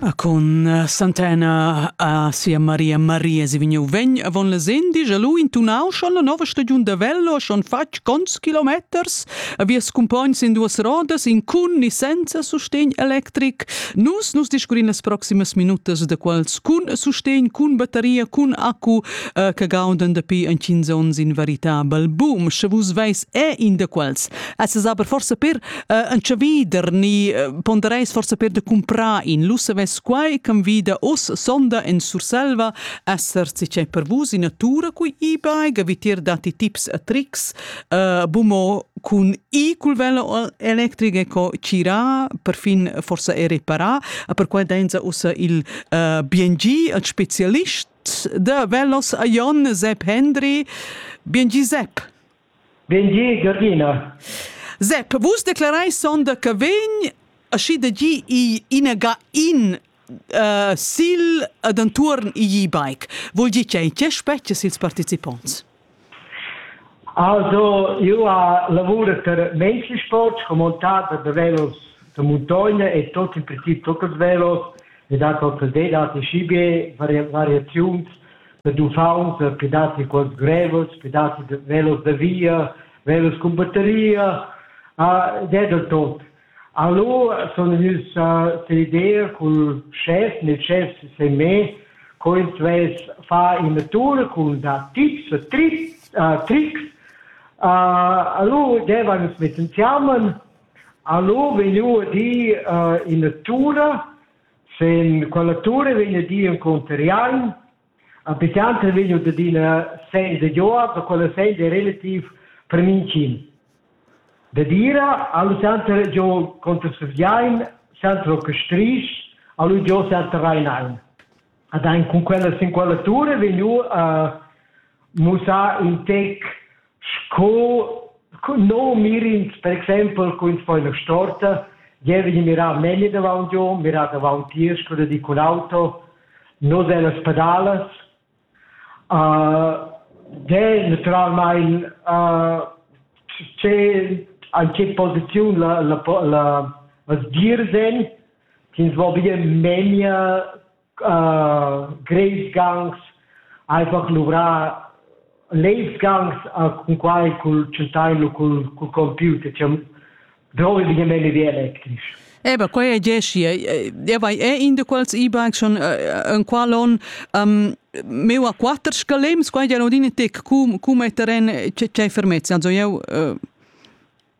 Ah, cun eh, Santana a sia Maria Maria si vigniu vegn avon la sen digia lu intunau schon la nova stagiun da Vello schon fatg cons kilometers a vias cumpogns in duas rodas in cun ni senza sustegn electric nus nus discurin las proximas minutas da quals cun sustegn cun bateria cun accu eh, che gaudan dapi en 15 onns in veritabel boom sche vus veis è in da quals es es aber forse per Uh, en chavider ni uh, pondereis forse per de comprar in lu savess quai can vida os sonda en Surselva esser si c'è per vus in natura cui e-bike gavitir dati tips e tricks uh, bumo cun i cul velo electric co cira perfin forse e repara a per quai denza ussa il uh, BNG ein specialist da velos a Jon Sepp Hendry BNG Sepp Bendir, Gavrina. Zep, vus declarais sonda che vegn aschi da gi igl inaga in uh, sil ed entuorn igl e-bike. Vul dir che in che spetgas ils participonts? Also, io ha lavura per menschensport, montada da velos da montagna e tot in princip tot els velos ed ha qualche data schibe vari variaziuns ed uffauns, pli datti quels grevels, pli datti velos da via, velos cun batteria, ed è da tot. Allora sono gnüs a l'idea cul schef, nel schef se me, co ins vess far in natura cun da tips e trick, tricks. Allora devan ins mett insiamen, allora vegniu a dir in natura, Sen quella tura vegn a dir encunter Jan. A picanter vegn ad adina senda Joab, da quella senda è relativ per mincin. Da dira, allo center jo conter Sufjain, center orchestrisch, allo jo center Rheinain. Ad ein cun quella sin quella tura vegnu a mussar in tec Sco no mirins per exempel cun fai la storta, jeu vegn mirau memia davant giu, mirar davant tier sco da di cun auto, nus ein las pedalas. de naturalmein tgei en tgei posiziun la la la las dirs ein, ch'ins vo bia memia uh, greifgangs einfach luvrar leibsgangs cun quai cul centailu cul cul computer cioè drovigliamente wie elektrisch Eba, quai è Jessia. E vai, è in di quals IBAN schon in qualon um, meu a quatter scalems, quai ja rodin tec cum, cum è terren c'è fermezza. Also eu, uh,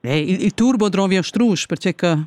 il, il turbo drovi a strus, perché che...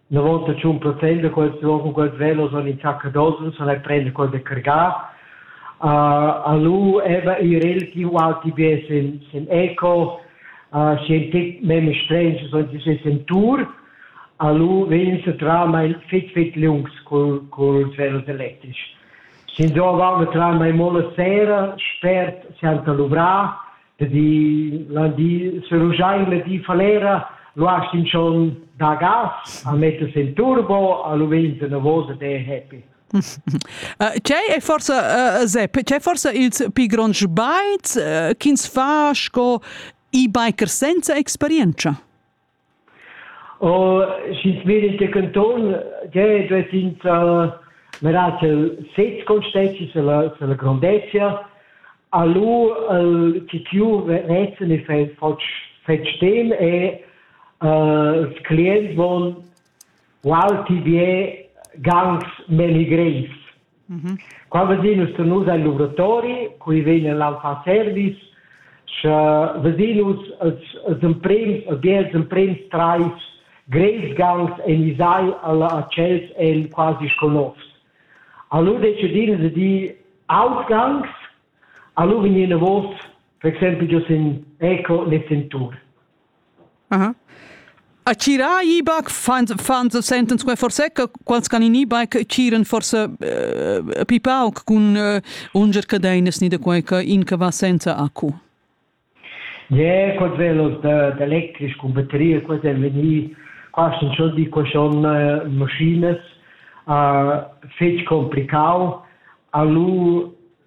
La vota tschun per prender quels cun quels velos en in sacca d'osens e prender quel da cargar. Uh, alu eva i relativ alti be sen, sen eco, uh, sen tet meme strensch, so se sen tour, alu vegn se trama il fit fit lungs col, col velos elettric. Sin do avamo trama i mola sera, spert se anta luvra, di la di serugiain le di falera luast in schon da gas a metter's in turbo a lu venta una vosa te happy C'è è forse uh, Sepp, c'è forse ils più grandi bikes uh, ch'ins fa sco e-biker senza esperienza? Oh, sch'ins vegn da canton, gie, duess ins mirar ch'el sez consteschi sulla, sulla grondezia. A lu il chiu vezzen e fetg fetg sten e uh, ils clients von wow, ti bien, ganz meligrens. Qua vezin nus tegnus el luvratori, cui vegn el al fa service, sche vezin nus els, els emprems, e bia els emprems trais greisgangs enisai alla accels en quasi sco novs. Allura decidin se di outgangs, allura vegnin enavos, per exempel giò sin Eco nel Sentur. A tgirà e-bike fan se sentan sco forse che quels can in e-bike tgiran forse pli pauc cun unger cadeinas ni da quei che in che va senza accu. Yeah, quels velos d'electric cun batterie, quels ein vegni quasi schon di qua schon maschinas fetg complicau. A lu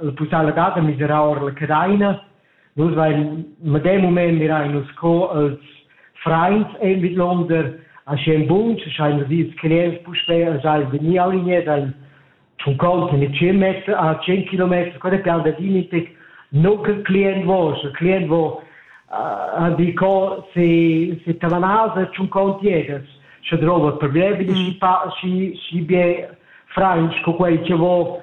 la pussaivladad da miserar ora la cadaina. Nus vain medem mument mirain nus co els frains ein vidlonder aschien bun, sche schein nus ils clients puspei sai vegni alinea dein schon kont mit 10 Meter a 10 Kilometer quella pian da Dinipik no che client vo sche client vo a di co se se tavanasa schon kont jedes sche drova problemi di si pa si si bie frains co quei che vo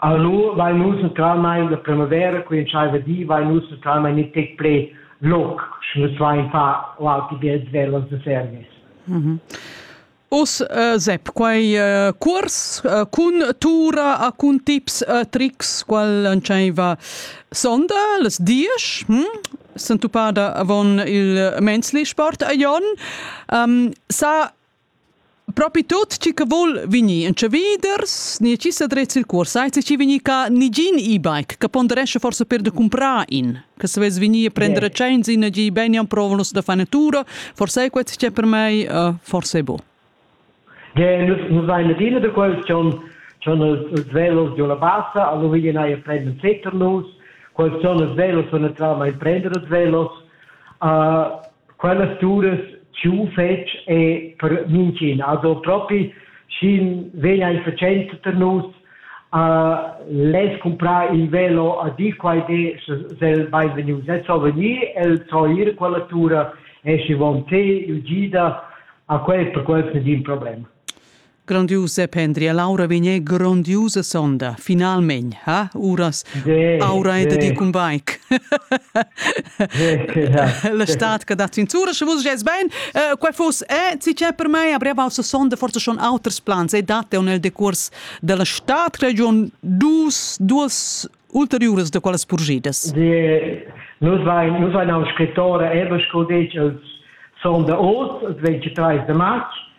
Aunc nu vain nus naturalmaing da primavera, quei entscheiva di, vain nus naturalmaing gnü tec plü loc, sch'nus vain far qualche biet svelt als service. Uss uh, Sepp, quai uh, cuors uh, cun tura e cun tips e trics qual entscheiva sonda las diesch, hm? sentupada avon il mensli sport a Jon. Um, sa Propi tut chi che vul vegnir in chaviders, ni chi sa dret sil cuors, sai chi vegnir ca nigin e-bike, che ponderescha forse per de comprar in, che se vess vegnir a prendere cenzi in gi beni am provonus da fa natura, forse è questo che per me uh, forse è buon. Ja, nus, nus ein adina da quels schon schon els velos giu la bassa, allo vegli nei a prendere un setter nus, quels schon els velos von naturalmente prendere els velos, uh, quellas turas giu fetg e per mintgin. Also propi, sch'in vegn a fatschent per nus, uh, les comprar il velo a dir quai de sel beinvegnius. El so venir, el so ir quella tura e schi von te, Eugida, a quel per quel sin din problem. Grandiusa pendria, l'aura vegné grandiusa sonda, finalmein, ha, uras? Sì, aura è da ti cun bike. La stat che dat zinzura, sche vus gest ben, uh, quei fuss, eh, ti c'è per me, a brev alza sonda, forse schon auters plans, e date nel decurs della stat region dus, duas ulteriuras da quelles purgidas. Sì, nus vein, nus vein un scrittore, eben sco detg, els sonda oz, els 23 de marz,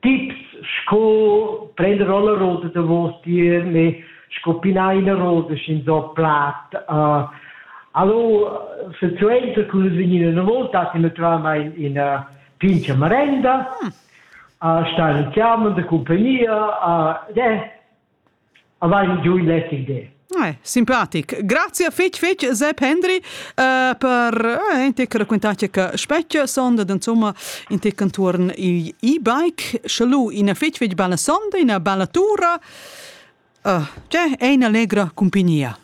Tips sco prender la roda davostier ne sco pinar ina roda sch'ins ho plat. Uh, alura silsuenter cun vegnin ina volta datti natüralmaing ina pincha marenda, uh, star in chiama da cumpagnia, uh, eh, Avain giu il letg de. Eh, simpatic. Grazie fetg fetg Sepp Hendry uh, per uh, in tec raccontace che specie sonda insomma in tec intorno il e-bike schalu ina fetg fetg bella sonda, una bella tura. Uh, cioè, è una allegra compagnia.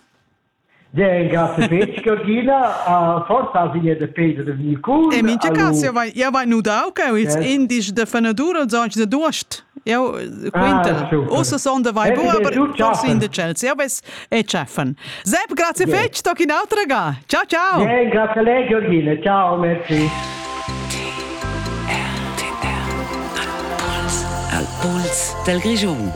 Bien, grazie fetg Georgina. Uh, forsa has ina da Peter da Vilcun. In mintga caso, jau vai, jau vai nudau che ils yes. indici de fenadur els oggi de duost. Jau quinta. Ah, Ussa son de vai bua, aber forsin de Chelsea. Jau ves e cheffen. Sepp, grazie fetg, toc in autra ga. Ciao, ciao. Bien, grazie a lei Georgina. Ciao, merci. Al Puls del Grigium.